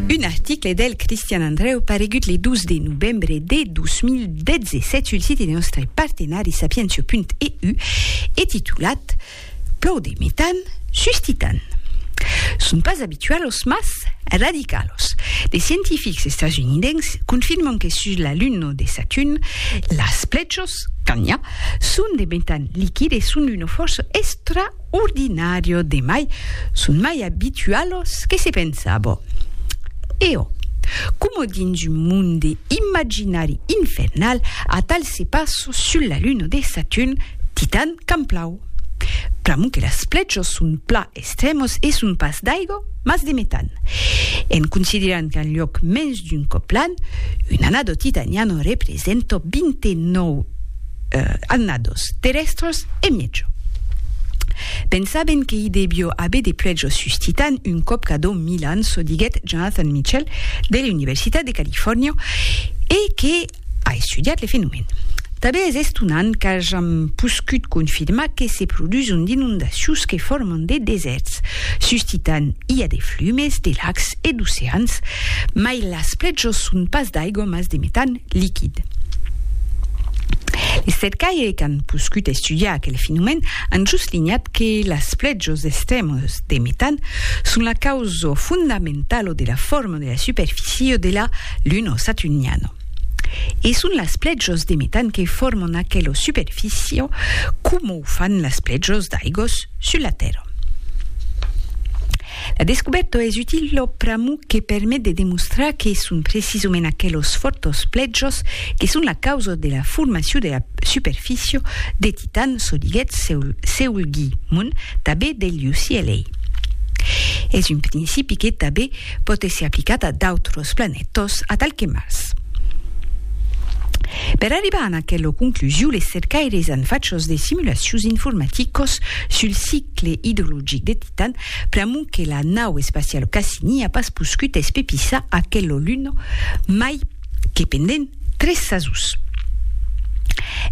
Un article del Cristian Andreu paregut le 12 de novembre de 2017 sul site de nòstre partenari sapientia.eu e titulat Plòu de metan suscitan son pas abitualos mas radicalos. De scientifics estasunidens confirman que sus la Luna de Saturn las plèchos, quand n'i a, son de metan liquid e son d'una fòrça extra ordinario de mai son mai abitualos que se pensabo. E ò, coma dins un monde imaginari infernal atal se passo sul la luna de Saturn, Titan qu'an plau. Pr'amor que las plechos son pla estremos e son pas d'aigo, mas de metan. En considerant qu'an lloc mens d'un còp l'an, un anado titaniano represento 29. annados, terrèstres e mièjo. Pensaben que i devió aver de puèjos suscitant un còp cada mil ans, çò diguèt Jonathan Mitchell de l'Universitat de Califòrnia e que a estudiat le fenomèn. Tanben es estonant qu'ajam poscut confirmar que se produson d'inondacions que forman de desèrts, suscitant i a de flumes de lacs e d'oceans, mai las puèjos son pas d'aigua mas de metan liquid. Es cercaires qu'an poscut estudiar aquel fenomèn an soslinhat que las flèchos d'estremols de metan son la causa fondamentala de la forma de la superficie de la Luna saturniana. E son las flèchos de metan que forman aquela superficie coma o fan las flèchos d'aigos sus la Tèrra. La descubèrta es utila pr'amor que permet de demostrar que son precisament aquelos fòrtos plèjos que son la causa de la formacion de la superficia de Titan, çò diguèt Seol Gi Mun, tanben del UCLA. Es un principi que tanben pòt èsser aplicat a d'autras planètas atal que Mars. Per arribar a aquela conclusion, les cercaires an fachas de simulacions informaticas sul nucle idrologic de Titan, pr'amont que la nau espacial Cassini a pas poscut espepissar aquelo luno mai que pendent tres sasons.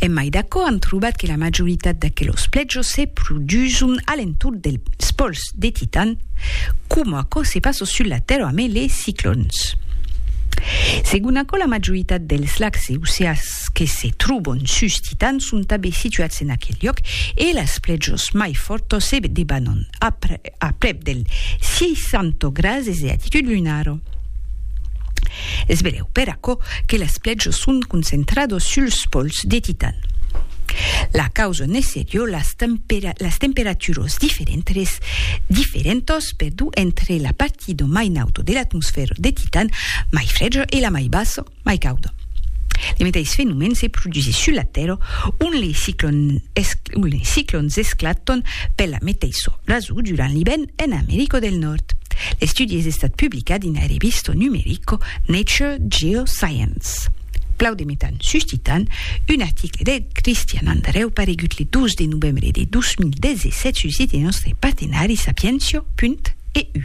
Emai d'aquò, an trobat que la majoritat d'aquelos plèjos se produson a l'entorn dels pòls de Titan, coma aquò se passa sus la Tèrra amé les ciclòns. Segon aquò, la majoritat dels lacs e oceans Sòrds que se trobon sus Titan son tanben situats en aquel liòc e las plèjos mai fòrtos se debanon a prèp del 600 grases de latitud lunar. Es benlèu per aquò que las plèjos son concentrados suls pòls de Titan. La causa ne serió las temperaturas diferentes diferentas perdó entre la partida mai nauta de l'atmosfèra de Titan, mai freja, e la mai bassa, mai cauda. Le meteis fenomèn se produsís sus la Tèrra ont les ciclons esclatàn per la meteissa rason durant l'ivèrn en America del Nòrd. L'estudi es estat publicat dina revista numerica Nature Geoscience. Plau de metan suscitan un article de Christian Andreu paregut le 12 de novembre de 2017 sul site de nòstre partenari sapientia.eu.